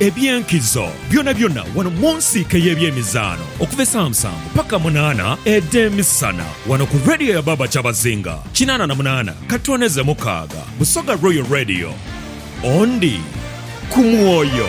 Eby'enkizo byonabyona wano mu nsiike ey'ebyemizaano okuva esaa musanvu paka munaana edh'emisana wano ku Radio ya Baaba Kyabazinga kinaana na munaana katooneze mukaaga, Busoga Royal Radio. Ondi ku mwoyo.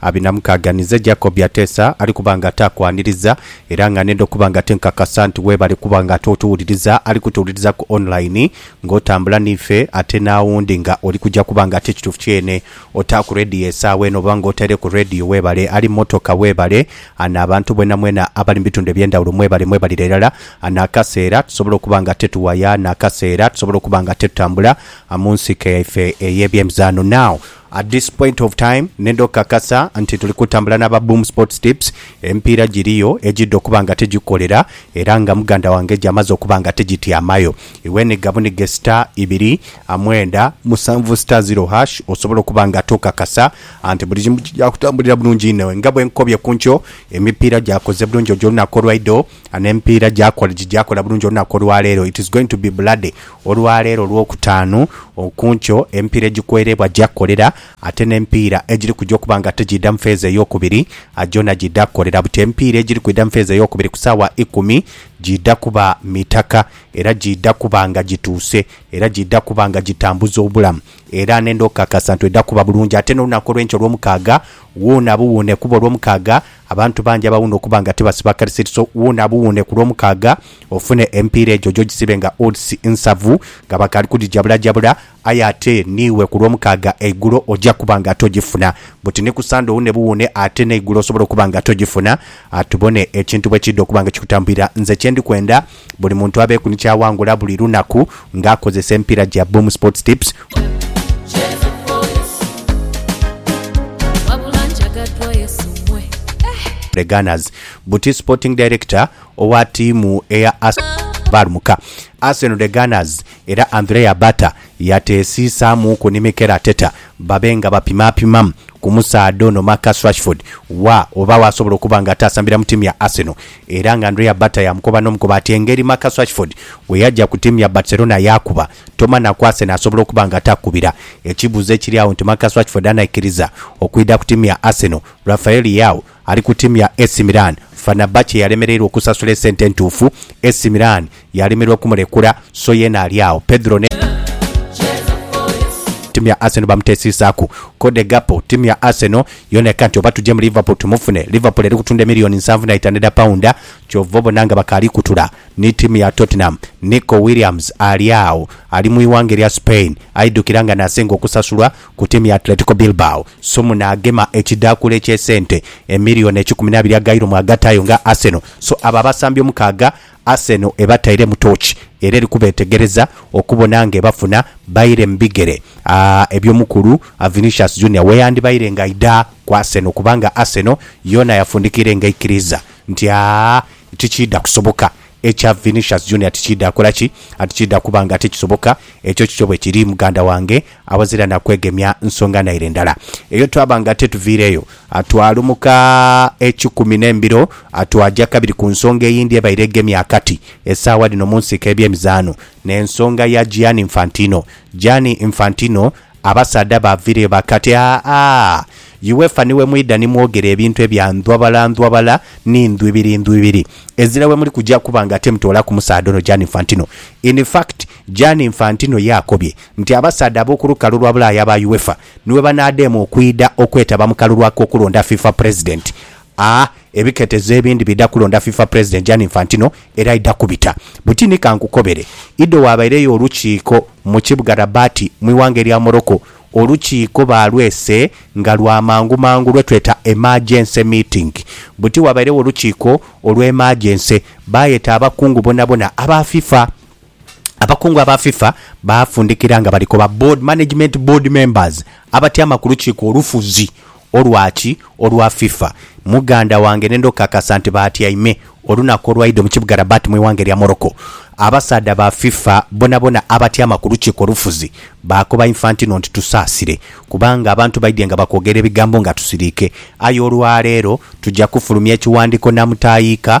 Abinamukaaganiza Jacob ateesa ali kuba nga taakwaniriza era nga nenda okuba nga tinkakasa nti weebale kuba nga ate otuwuliriza ali kutuwuliriza ku online ng'otambula n'ife ate n'awundi nga oli kuja kuba nga ate kituufu kyene otaaku radio esaawa eno oba ng'otaireku radio weebale ali mu motoka weebale ana abantu bwenamwena abali mu bitundu eby'endawulo mwebale mwebalire irala ana akaseera tusobola okuba nga ate tuwaya ana akaseera tusobola okuba nga ate tutambula mu nsike yaife ey'ebyemizaano now At this point of time nenda okukakasa nti tuli kutambula n'aba Boom Sports Tips, emipiira giriyo egidha okuba nga tigikolera era nga muganda wange gy'amaze okuba nga tigityamayo. Iwe nhiga bunhige star ibiri, mwenda, musanvu star zero hash osobole okuba nga tokakasa nti buli kimu kija kutambulira bulungi inho. Nga bwe nkukobye ku nkyo, emipiira gyakoze bulungi ojo olunaku olwaidho. And empiira gyakola gigyakola bulungi olunaku olwaleero it is going to be bloody olwaleero olwokutaanu okunkyo empiira egikwereebwa gyakolera ate nempiira egiri kuja okuba nga tegiidha mufeeza eyokubiri gyona giidha kukolera buti empiira egiri kwidha mufeeza eyokubiri kusaawa ikumi giidha kuba mitaka era giidha kuba nga gituuse era giidha kuba nga gitambuza obulamu era nenda okukakasa nti edha kuba bulungi ate nolunaku olwenkya olwomukaaga wuuna buwuune kuba olwomukaaga Abantu bangi abawuuna okuba nga tibasiba kalisiti so wuuna buwuune ku Lwomukaaga ofune emipiira egyo oje ogisibe nga odds nsavu nga bakaali kugijabulajabula aye ate niiwe ku Lwomukaaga eigulo oja kuba nga ate ogifuna buti ni ku Ssande owuune buwuune ate n'eigulo osobola okuba nga ate ogifuna. Tubone ekintu bwe kiidha okuba nga kikutambwira. Nze kye ndi kwenda. Buli muntu abeeku ni ky'awangula buli lunaku nga akozesa emipiira gya Boom Sports Tips. The Gunners. Buti Sporting Director owa ttiimu eya Arsenal Balmuka. Arsenal The Gunners era Andrea Bata yateesiisaamuuku ni Mikel Arteta babe nga bapimaapimamu ku musaadha ono Marcus Rashford wa oba waasobola okuba nga ataasambira mu ttiimu ya Arsenal. era nga Andrea Bata yaamukoba n'omukoba ati engeri Marcus Rashford bwe yaja ku tiimu ya Barcelona yaakuba Toma na Kouasen asobola okuba nga takubira. Ekibuuzo ekiri agho nti Marcus Rashford anaikiriza okwidha ku tiimu ya Arsenal? Rafael Leao ali ku tiimu ya AC Milan, Fenerbahce yalemereirwa okusasula esente entuufu, AC Milan Yalemererwa okumulekura, so yeena ali agho. Pedro ne. Ttiimu ya Arsenal bamutesiisaaku. Cody Gakpo, Ttiimu ya Arsenal yoona eka nti oba tuje mu Liverpool tumufune. Liverpool eri kutunda emiliyoni nsanvu na itaanu edha paunda, kyova obona nga bakaali kutula ni ttiimu ya Tottenham. Nico Williams ali agho, ali mu ighanga erya Spain, aidhukira nga n'asinga okusasulwa ku ttiimu ya Atletico Bilbao. So muno agema ekidhaakula eky'esente emiliyoni ekikumi n'abiri aga Euro mw'agattaayo nga Arsenal. So abo abasambi omukaaga Arsenal ebatairemu tooki era eri kubeetegereza okubona ng'ebafuna baire mu bigere eby'omukulu Vinicius Junior weyandibaire ng'aidha ku Arsenal kubanga Arsenal yoona yafundikiire ng'eikiriiza nti tikiidha kusoboka ekya Vinicius Junior tikiidha kola ki? tikiidha kuba nga tikisoboka. Ekyo kikyo bwekiri muganda wange Awazira na kwegemya nsonga naire ndala eyo twaba nga tetuviireeyo. Twalumuka ekikumi n'embiro twaja kabiri ku nsonga eyindi ebaire egemye akati esaawa dhino mu nsiika y'ebyemizaano, n'ensonga ya Gianni Infantino. Gianni Infantino abasaadha baaviireyo bakati, Aa, UEFA ni we mwidha ni mwogera ebintu ebya ndhwabalandhwabala ni ndhwibirindhwibiri. Ezira we muli kuja kuba nga temutoolaku musaadha ono Gianni Infantino. In fact, Gianni Infantino yaakobye nti abasaadha ab'oku lukalu lwa Bulaaya aba UEFA ni bwe banaadema okwidha okwetaba mu kalulu ak'okulonda FIFA President. A Ebiketezo ebindi bidha kulonda FIFA President Gianni Infantino era aidha kubita buti ni. Ka nkukobere, idho waabaireyo olukiiko mu kibuga Rabat mu ighanga erya Morocco. Olukiiko baalwese nga lwa mangu mangu lwe tweta emergency meeting. Buti wabairegho olukiiko olw'emergency, baayeta abakungu bonabona aba FIFA. Abakungu aba FIFA baafundikira nga bali koba Board Management Board Members abatyama ku lukiiko olufuzi olwa ki olwa FIFA muganda wange ne ndhokakasa nti baatyaime olunaku olwaidho mu kibuga Rabat mu ighanga erya Morocco. Abasaadha ba FIFA bonabona abatyama ku lukiiko olufuzi baakoba Infantino nti tusaasire kubanga abantu baidhye nga bakwogera ebigambo nga tusiriike aye olwaleero tuja kufulumya ekiwandiiko namutaayiika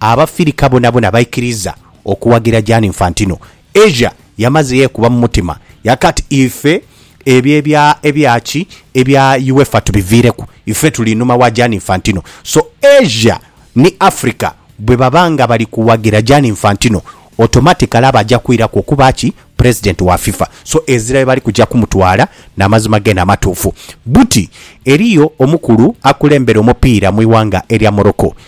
Abafirika bonabona baikiriza okuwagira Gianni Infantino. Asia yamaze yekuba mu mutima yaka ati, Ife ebyo ebya ebya ki ebya UEFA tubiviireku. Ife tuli inhuma wa Gianni Infantino. So Asia ni Africa bwebaba nga bali kuwagira Gianni Infantino, automatically aba aja kwiraku okuba ki President wa FIFA. So ezira yebali kuja kumutwala na mazima gene amatuufu. Buti eriyo omukulu akulembera omupiira mu ighanga erya Morocco